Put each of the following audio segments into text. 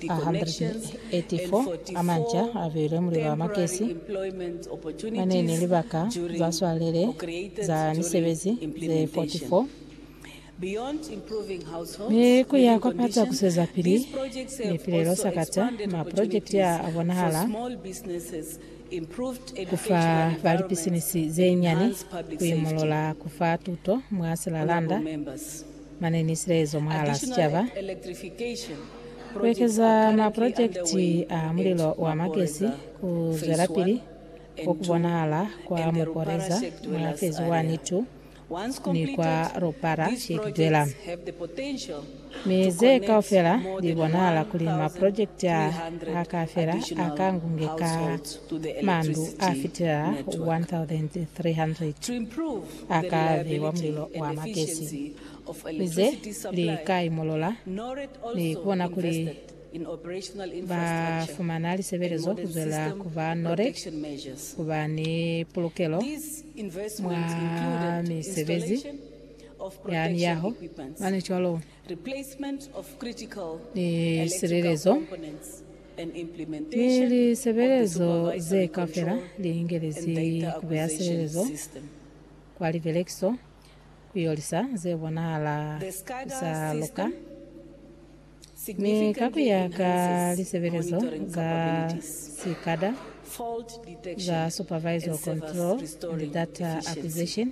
184 a manca a beilwe muli ba makesi a ne ni libaka za swalele za misebezi ze 44, mi ku ya kwa pata ku swezapili ni pilelo sakata. Maprojekiti a a bonahala ku fa ba lipisinisi ze nyani, ku imolola, ku fa tuto mwa silalanda. Mane ni silaezo mwahal'a sicaba, ku ekeza mapolojekiti a mulilo wa magesi, ku zwelapili ku ku bonahala kwa Muporeza mwa Fezi 1, 2, ni kwa Rupara Hikdwela. Mi ze kaufela li bonahala kuli mapolojekiti a a ka fela a ka ngunge ka mandu a fitelela 1,300. a ka bewa mulilo wa magesi, ni ze li ka imolola, ni ku bona kuli ba fumana lisebelezo ku zwela ku ba nole, ku ba ni pulukelo mwa misebezi ya miyaho, mane cwalo. ni silelezo, ni lisebelezo ze kaufela li ingelezi ku beya silelezo kwa libelekiso ku yo lisa ze bonahala ku sa luka, mi ka ku ya ka lisebelezo za SCADA za Supervisor Control and Data Acquisition,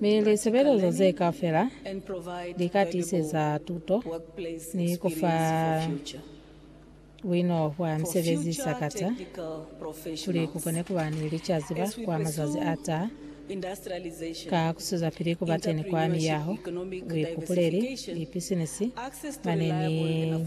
Mi lisebelezo ze kaufela li ka tiseza tuto ni ku fa buino bwa misebezi sakata kuli ku kone kuba ni licaziba kwa mazazi a taha, ka ku swezapili kuba teni kwa miyaho, buikupuleli, lipisinisi, mane ni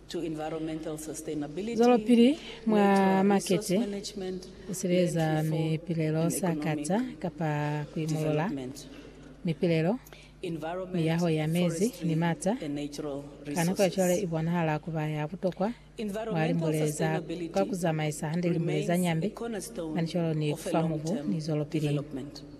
Zwelopili mwa makete, ku sireledza mipilelo sa kata kapa ku imolola mipilelo, miyaho ya mezi ni mata, ka nako ya cwale i bonahala ku ba ya butokwa mwa limbule za kwa ku zamaisa hande limbule za nyambi, manicolo ni ku fa mubu, ni zwelopili.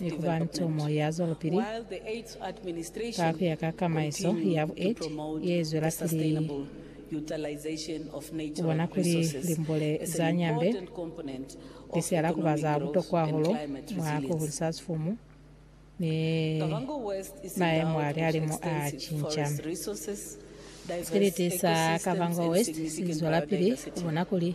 ni ku ba ntomo ya zwelopili ka ku ya ka kamaiso ya bueti ye zwelapili ku bona kuli limbule za Nyambe li sihala ku ba za butokwa hahulu mwa ku hulisa sifumu ni maemo a lihalimu a cinca. Sikiliti sa Kavango West si zwelapili ku bona kuli